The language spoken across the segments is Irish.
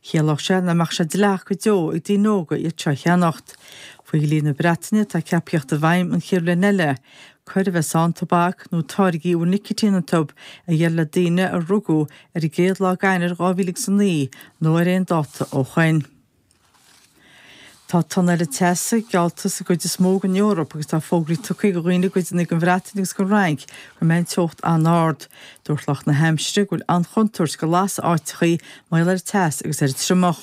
Chiallódh sé nach mbeadh sé dleathach go deo ag daoine óga iad seo a cheannacht. Faoi dhlí na Breataine, atá ceaptha a thíocht i bhfeidhm an chéad bhliain eile, coir a bheas ann tobac nó táirgí a bhfuil nicitín iontub a dhíol le daoine a rugadh ar an gcéad lá d'Eanáir 2000 agus a naoi nó ar aon dáta ó shoin. Tá tonn eile teasa geallta sa gcuid is mó den Eoraip agus tá fógraí tugtha do dhaoine i gcuideannaí den Bhreatain agus den Fhrainc go mbeidh an teocht an-ard. Dúirt lucht na haimsire go bhfuil an-chontúirt go lasfaidh áiteachaí mar gheall ar an teas agus ar an triomach.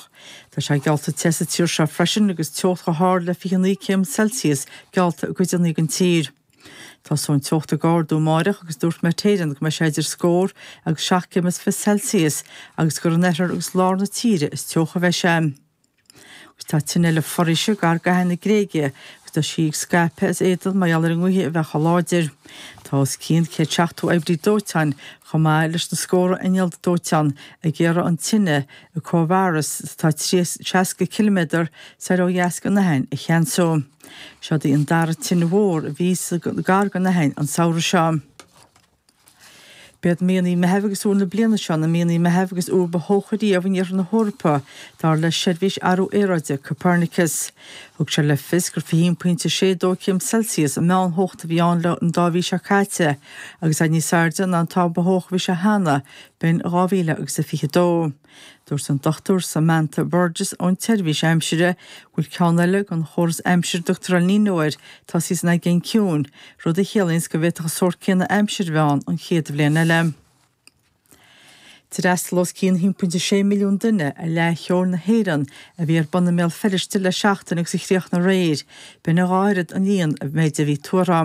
Tá sé geallta te sa tír seo freisin agus teocht chomh hard le 29 céim celsius geallta i gcuideannaí den tír. Tosóidh an teocht ag ardú amáireach agus dúirt Met Éireann go mbeidh sé idir scór agus seacht gcéim is fiche Celsius agus gur in oirthear agus lár na tíre is teocha a bheidh sé. Agus tá tine eile foraoise gar d'Aithin na Gréige agus tá sí ag scaipeadh as éadan mar gheall ar an ngaoth a bheith chomh láidir. Tá os cionn céad seachtó oibrí dóiteáin, chomh maith leis na scórtha inneall dóiteáin, ag iarraidh an tine i Kouvaras atá seasca ciliméadar soir ó dheas den Aithin a cheansú. Seo í an dara tine mhór a bhí gar don Aithin an samhradh seo. B'iad míonnaí Meithimh agus Iúil na bliana seo na míonna Meithimh agus Iúil ba theocha riamh in iarthar na hEorpa, dar le Seirbhís Athrú Aeráide Copernicus. Thug sé le fios gur 21.62 céim Celsius an meántheocht a bhí ann le an dá mhí seo caite, agus é níos airde ná an t-am ba theocha a bhí sé cheana, b'in in 2022. Dúirt an Dr Samantha Burgess ón tSeirbhís Aimsire go bhfuil ceann eile den chóras aimsire a dtugtar El Niño air tosaithe san Aigéan Ciúin, rud a chiallaíonns go bhféadfadh an sórt céanna aimsire a bheith ann an chéad bhliain eile. D'fhreastail os cionn 1.6 milliún duine ar Fhleadh Cheoil na hÉireann a bhí ar bun i mBéal Feirste le seachtain agus a chríochnaigh aréir, b'in a dhá oiread an líon a bhí tuartha.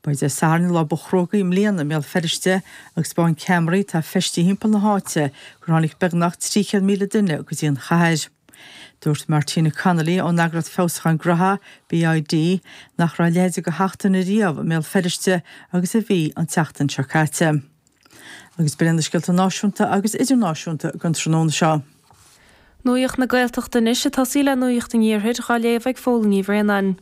B'é Dé Sathairn an lá ba chruógaí i mbliana i mBéal Feirste agus spáin ceamaraí atá feistithe thimpeall na háite gur tháinig beagnach 300,000 duine go dtí an chathair. Dúirt Martina Connolly ón eagras feabhsúcháin graithe, BID, nach raibh a leithéid de sheachtain riamh i mBéal Feirste agus a bhí an tseachtain seo caite. Agus b'in iad na scéalta náisiúnta agus idirnáisiúnta againn tráthnóna seo. Nuacht na Gaeltachta anois ag tosaí le Nuacht an Iarthair dhá léamh ag Fódhla Ní Bhraonáin.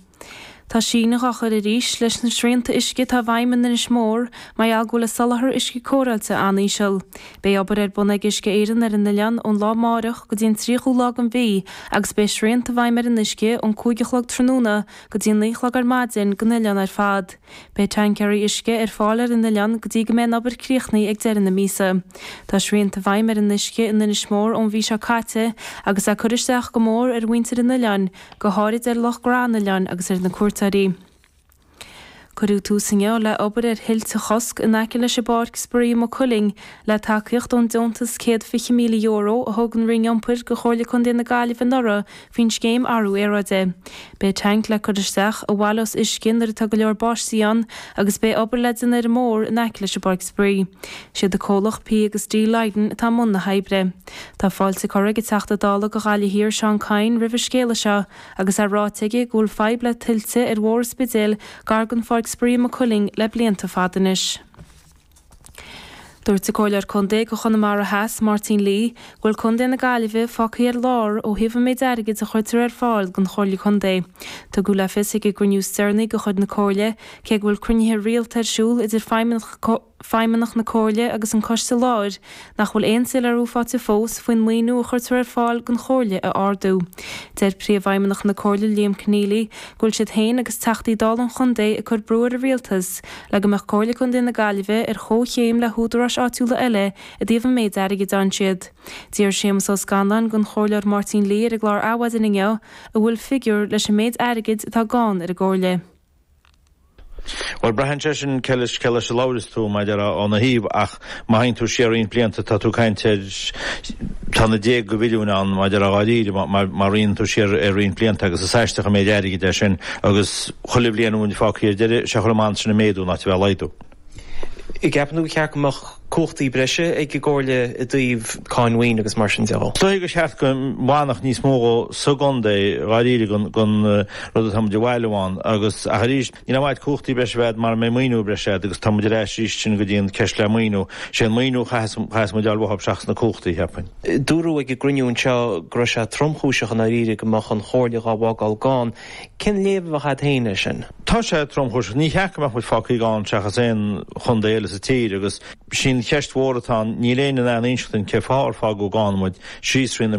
Tá síneadh dhá chur arís leis na srianta uisce atá i bhfeidhm in Inis Mór mar gheall go bhfuil an soláthar uisce cóireáilte an-íseal. Beidh obair ar bun ag Uisce Éireann ar an oileán ón lá amáireach go dtí an tríochú lá den mhí agus beidh srianta i bhfeidhm ar an uisce ón cúig a chlog tráthnóna go dtí an naoi a chlog ar maidin don oileán ar fad. Beidh tancaerí uisce ar fáil ar an oileán go dtí go mbeidh an obair críochnaithe ag deireadh na míosa. Tá srianta i bhfeidhm ar an uisce in Inis Mór ón mhí seo caite agus é ag cur isteach go mór ar mhuintir an oileáin, go háirid ar lucht gnó an oileáin agus ar na cuairteoirí. Cuireadh tús inniu le obair ar thuilte a chosc in aice leis an bPáirc Spraoi i Maigh Cuilinn le tacaíocht ón deontas €120,000 a thug an Roinn Iompair go Chomhairle Contae na Gaillimhe anuraidh faoin scéim athrú aeráide. Beidh tanc le cur isteach, a bhaileos uisce nuair atá go leor báistí ann agus beidh obair le déanamh ar an mbóthar in aice leis an bpáirc spraoi. Sé an comhlucht P agus D Lydon atá i mbun na hoibre. Tá fáilte curtha ag an Teachta Dála go Ghaillimh Thiar Seán Kyne roimh an scéala seo agus é ráite aige go bhfuil fadhb le tuilte ar Bhóthar an Spidéil gar gon pháirc spraoi i Maigh Cuilinn le blianta fada anois. Dúirt an Comhairleoir Contae do Chonamara Theas, Máirtín Lee, go bhfuil Contae na Gaillimhe fágtha ar lár ó thaobh an méid airgid a chuirtear ar fáil don Chomhairle Contae. Tugadh le fios ag an gcruinniú is deireanaí de chuid na Comhairle, cé go bhfuil cruinnithe rialta ar siúl idir feidhmeannaigh na Comhairle agus an coiste láir, nach bhfuil aon soiléiriú faighte fós faoin maoiniú a chuirtear ar fáil don Chomhairle a ardú. Deir Príomhfheidhmeannach na Comhairle Liam Conneally go bhfuil siad féin agus Teachtaí Dála an chontae ag cur brú ar an Rialtas le go mbeadh Comhairle Contae na Gaillimhe ar chomhchéim le húdaráis áitiúla eile i dtaobh an méid airgid a fhaigheann siad. D'fhiafraigh Séamus Ó Scanláin den Chomhairleoir Máirtín Lee ar an gclár Adhmhaidin inniu an bhfuil figiúr leis an méid airgid atá gann ar an gComhairle. Bhuel, braitheann sé sin cé leis a labhraíos tú, maidir óna thaobh, ach má théann tú siar roinnt blianta tá tú ag caint ar, tá na déag go mhilliúin ann, maidir dháiríre, má théann tú siar roinnt blianta agus is aisteach an méid airgid é sin agus chuile bhliain a bhfuil muid fágtha ar deireadh, sea is amhlaidh atá sé ag méadú ná a bheith ag laghdú. gceapann tú gur cheart go mbeadh cumhachtaí breise ag an gComhairle i dtaobh cáin mhaoin agus mar sin de? Is dóigh gur cheart go bhfanfadh níos mó sa gcontae dháiríre den rud atá muid a bhailiú ann agus, ach arís, ní haon mhaith cumhachtaí breise a bheith agat mara mbeidh maoiniú breise agat agus tá muid ar ais arís sin go dtí an ceist le maoiniú. Sé an maoiniú a chaitheas muid a fháil seachas na cumhachtaí, cheapfainn. Dúradh ag an gcruinniú anseo go raibh sé tromchúiseach i ndáiríre go mbeadh an Chomhairle dhá bhfágáil gann. Cén léamh a bheadh agat féin air sin? Tá sé tromchúiseach. Níor cheart go mbeadh muid fágtha gann seachas aon chontae eile sa tír agus sin an cheist mhór atá ann. Níl éinne in ann inseacht duinn cén fáth ar fágadh gann muid síos thrí na